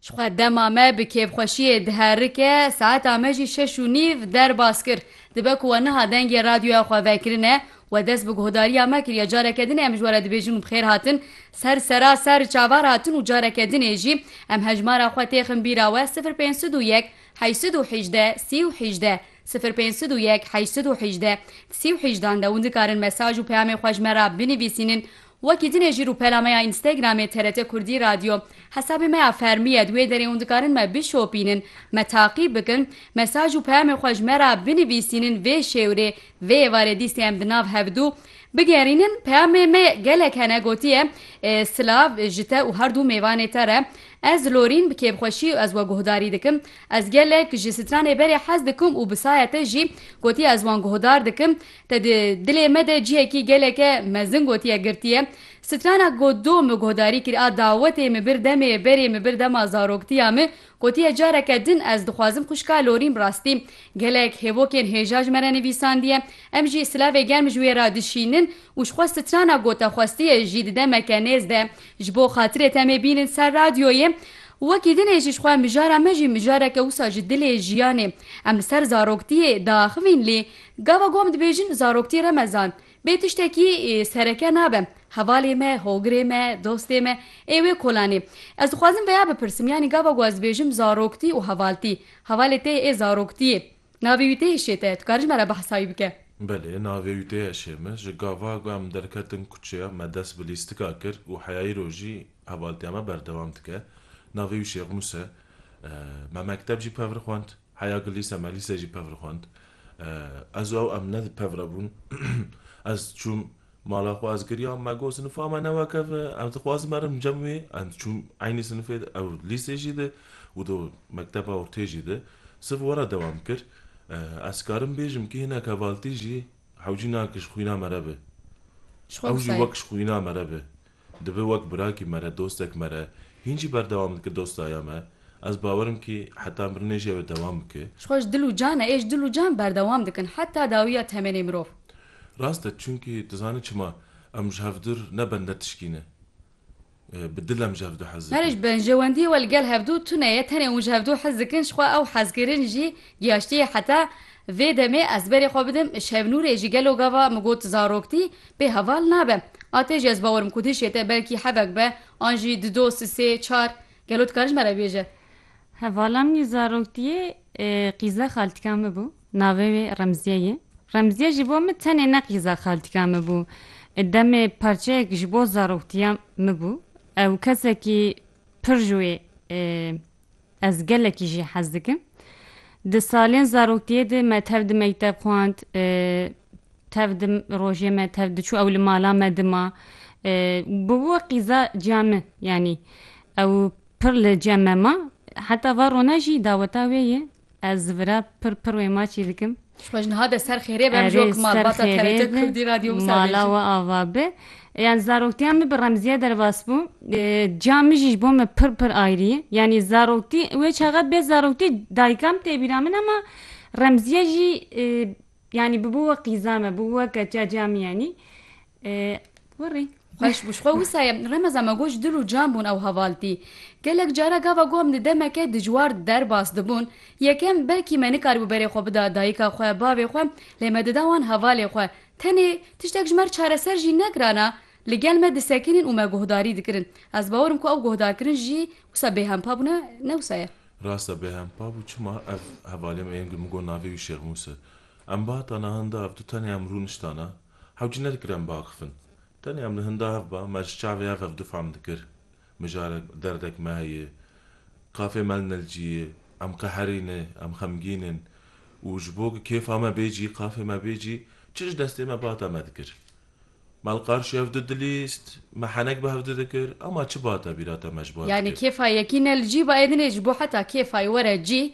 Ji xwe dema me bi kêfxweşiyê diherike, saeta me jî şeş û nîv derbas kir. Dibe ku we niha dengê radyoya xwe vekirine, we dest bi guhdariya me kiriye. Careke din ê em ji we re dibêjin û bi xêr hatin. Ser sera ser çavar hatin û careke din ê jî em hejmara xwe têxin bîra we sifir pênc sed û yek heşt sed û hîjdeh sî û hîjdeh sifir pênc sed û yek heşt sed û hîjdeh sî û hîjdan de hûn dikarin mesaj û peyamê xwe ji me re binivîsînin Wekî din e jî rûpela me ya Instagramê TRT Kurdî Radio hesabê me ya fermî ye di wê derê hûn dikarin me bişopînin, me taqîb bikin, mesaj û peyamên xwe ji me re binivîsînin vê şêwrê, vê êvarê dîstê em di nav hevdu bigerînin. Peyamê me gelek hene gotiye Silav ji te û herdû mêvanê te re. Ez Lorîn bi kêfxweşî ez we guhdarî dikim. Ez gelek ji stranê berê hez dikim û bi saya te jî gotiye ez wan guhdar dikim. Te di dilê me de cihekî geleke mezin gotiye girtiye. Strana got do mi guhdarî kir a dawetê mi bir demê berê mi bir dema zaroktiya mi gotiye careke din ez dixwazim xwişka lorîm rastî gelek hêvokên hêja ji me re nivîsandiye em jî silavê germ ji wê re dişînin û ji xwe strana gote xwestiye jî di demeke nêz de ji bo xatirê te mê bînin ser radyoyê Wekî dinê jî ji xwe mijara me jî mijareke wisa ji dilê jiyanê em li ser zaroktiyê diaxivîn lê Gava gom dibêjin zaroktî remezan bê tiştekî sereke nabe. Hevalê me, hogirê me, dostê me ê wê kolanê. Ez dixwazim veya bipirsim yanî gava ku ez dibêjim zaroktî û hevaltî, hevalê tê ê zaroktî yê. Navê wî tê ê şê te. Tu karî ji me re behsa wî bike? Belê, navê wî tê ye şê min. Ji gava ku em derketin kuçeya me dest bi lîstika kir û heyayî rojî hevaltiya me berdewam dike. Navê wî Şêxnûs e. Me mekteb jî pevr xwend. Heya ku lîse me lîse jî pevr xwend. Ez û ew em ne pevre bûn. Ez çûm mala xwe ez giriyam me got sinifa me ne wek ev e em dixwazin merin cem wê ez çûm eynî sinifê de ew lîsê jî de û do mekteba ortê jî de siv were dewam kir. Ez karim bêjim ku hinek hevaltî jî hewcî nakin ji xwîna me re be. Ji xwe ew jî wek ji xwîna me re be. Dibe wek birakî mere, dostek mere, hîn jî berdewam dike dostaya me, ez bawer im kî heta mirinê jî ew ê dewam bike. Ji xwe ji dil û can e, ê ji dil û can berdewam dikin heta dawiya temenê mirov. Rast e, çimkî tu zanî çima, em ji hevdur ne bende tişkî ne. Bi dil em ji hevdu hez Her dikin. benjewendiyê we li gel hevdu tune ye, tenê hûn ji hevdu hez dikin, ji xwe ew hezkirin jî giyaştiye heta Vê demê ez berê xwe bidim Şevnûrê jî gelo gava min got zaroktî pê heval nabe. A tê jî ez bawer im ku din şête belkî hevek be an jî di dos di sê çar gelo tu karî ji me re bêje. Hevala min ê zaroktiyê qîza xaltika min bû navê wê Remziye ye. Remziye jî bo min tenê ne qîza xaltika min bû demê parçeyek ji bo zaroktiya min bû. Ew kesekî pir ji wê Ez gelekî jî hez dikim. Di salên zaroktiyê de me tev di mekteb xwend, tev di rojê me tev diçû ew li mala me dima. Bi wê qîza ciya min yanî ew pir li cem me ma. Heta va rona jî daweta wê ye. Ez vira pir pir wê ma çî dikim. Xweş niha de ser xêrê be mijok malbata TRT Kurdî radyo wisa mala we ava bi. Yani zaroktiya min bi remziye derbas bû. Ca min jî ji bo min pir pir ayrî. Yani zaroktî wê çaxa bê zaroktî dayikam tê bîra min ama remziye jî yani bi bo we qîza me, bi bo we keça ca min yanî. Kurî. Xweş bû. Ji xwe wisa ye. Remeza me got ji dil û can bûn ew hevaltî. Gelek caran gava ku em di demeke dijwar derbas dibûn, yekem belkî me nikarîbû berê xwe bida dayika xwe, bavê xwe, lê me dida wan hevalê xwe. Tenê tiştek ji me re çareser jî negirana, li gel me disekinîn û me guhdarî dikirin. Ez bawer im ku ew guhdarkirin jî wisa bêhempa bû ne, ne wisa ye. Rast e bêhempa bû. Çima? Ev hevalê me yên ku min got navê wî Şêx Mûs e. Em bi hata nihan de ev du tenê em rûniştana, Hev cî ne dikir em biakifin. Tenê em li hinda hev ba, me ji çavê hev hev difam dikir. Mijarek derdek me heye. Kafê me li nilcî ye. Em qeherî ne, em xemgîn in. Û ji bo ku kêfa me bê cî, qafê me bê cî, çi ji destê me bate me dikir. Me li qarşî hev di dilîst, me henek bi hev di dikir, ema çi bate bîra te me ji bo hev Yani dikir. kêfa yekî ne li cî ba ê dinê ji bo heta kêfa yê were cî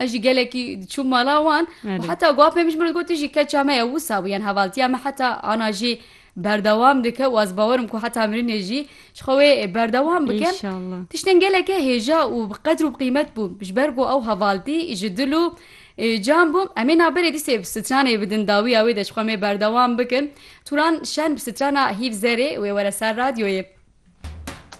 Ez jî gelekî diçûm mala wan û heta gwa pê min ji min re gotî jî keça me ye wisa bû yan hevaltiya me heta ana jî berdewam dike û ez bawerim ku heta mirinê jî ji xwe wê berdewam bikin Înşallah. tiştên geleke hêja û bi qedr û bi qîmet bûn ji ber ku ew hevaltî ji dil û e, can bû em ê naberê dîsê bi stranê bi din dawiya wê de ji xwe mê berdewam bikin Turan Şen bi strana Hîv Zerê wê were ser radyoyê.